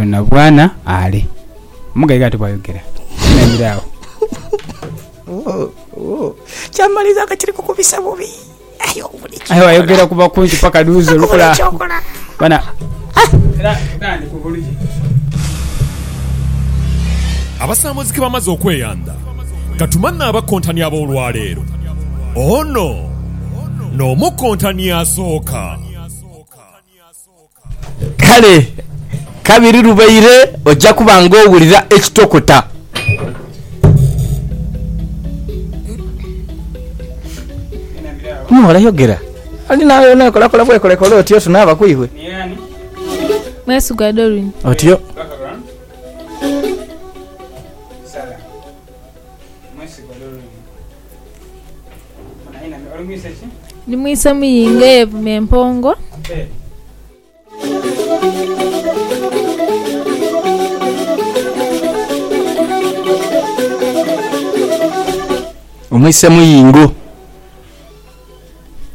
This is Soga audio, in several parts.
Kyonabwana ale. Omugaiga ati bwayogera naire agho. Kyamaliza nga kiri kukubisa bubi. Aye wayogera ku bakunki paka dhuuzi olukula. Bana. Era era ndi ku buluje. Abasaamozi ke bamaze okweyandha, ka tumanhe abakontani ab'olwaleero. Ono n'omukontani asooka. Kale kabiri lubaire oja kuba ng'owulira ekitokota. Mughala yogera. Ali naawe yena ekolakola bwekolekole otyo tunaaba ku iwe. Mwesigwa Doreen. Otyo. Ni mwise muyinge yeevuma empongo. Mwise muyingo.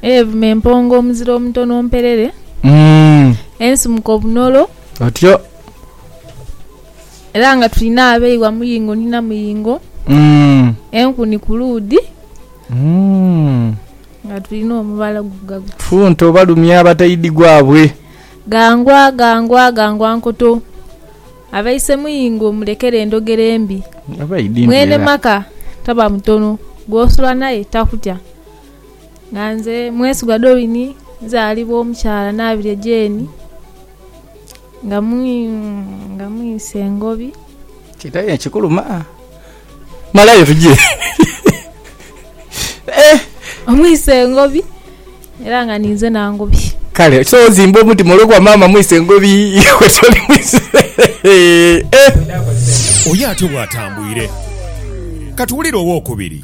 Yeevuma empongo omuzira omutono mperere. Ensimuka obunolo. Otyo. Era nga tulina abeeghwa muyingo ni na muyingo, enku ni ku luudhi, nga tulina omubala guvuga guti. Funto balumya abataidhi gwabwe. Ghangwa, ghangwa, ghangwa nkoto. Abaise muyingo mulekere endhogera embi. Mwene maka taba mutono, gw'osula naye takutya. Nga nze Mwesigwa Doreen, nzaalibwa omukyala Naabirye Jane. Nga mwise engobi. Kidhayo ekikuluma malayo tugye eh. Mwise engobi era nga ninze nangobi. Kale so ozimba omutima olwokuba maama mwise engobi iwe toli mwise eh. Oyo atyo bwatambwire. Katuwulire owokubiri.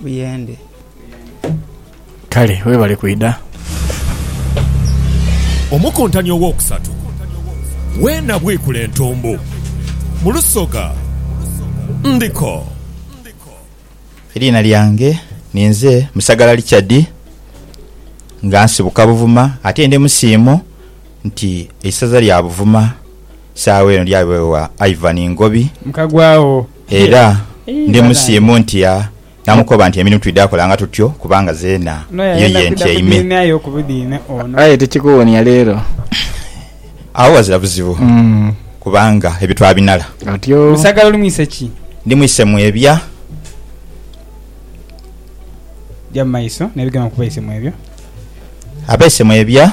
buyende. Kale webale kwidha. Omukuntani ow'okusatu we nabwikula entumbu mu lusoga ndiko. Eriina lyange ninze Musagala Richard nga nsibuka Buvuma ate ndi musiimu nti eisaza lya Buvuma. saagho eno lyabegha Ivan Ngobi Mukagwawo era ndi musiimu nti ya namukoba nti emirimu twidha kolanga tutyo kubanga zeena eyo ye ntyaime. Aye tikikuwonia leero. Agho ghazira buzibu kubanga ebyo twabinala. Musagala oli mwise ki? Ndi mwise mwebya. Gya mu maiso n'ebigambo ku baise mwebya. Abaise mwebya.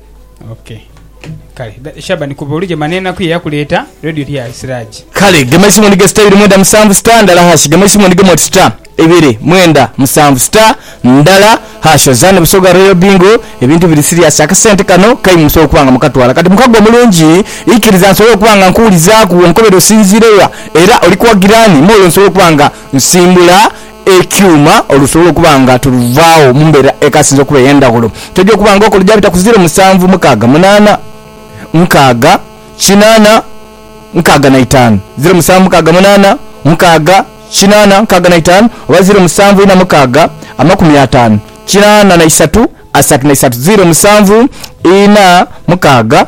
Ok. Kale, da, Shaban kuba oli gema n'enaku ye yakuleeta, radio ti ya Siraji. Kale, gema eisimu ondige star ibiri mwenda musanvu star ndala hash, gema eisimu ondigemu oti star ibiri mwenda musanvu star ndala hash ozaane Busoga Royal Bingo, ebintu biri siriasi, akasente kano kaimu musobola okuba nga mukatwala kati mukago omulungi, ikiriza nsobole okuba nga nkuwulizaaku wonkobera osinziire wa era oli kuwagira ani, m'olwo nsobole okuba nga nsimbula ekyuma olusobola okuba nga tuluvaagho mu mbeera ekasinze okuba ey'endhaghulo. Toja okuba nga okola gyabita ku ziiro musanvu, mukaaga, munaana, nkaaga, kinaana, nkaaga na itaanu, ziiro musanvu, mukaaga, munaana, nkaaga, kinaana, nkaaga na itaanu, oba ziiro musanvu, ina, mukaaga, amakumi ataanu, kinaana na isatu, asatu na isatu, ziiro musanvu, ina, mukaaga.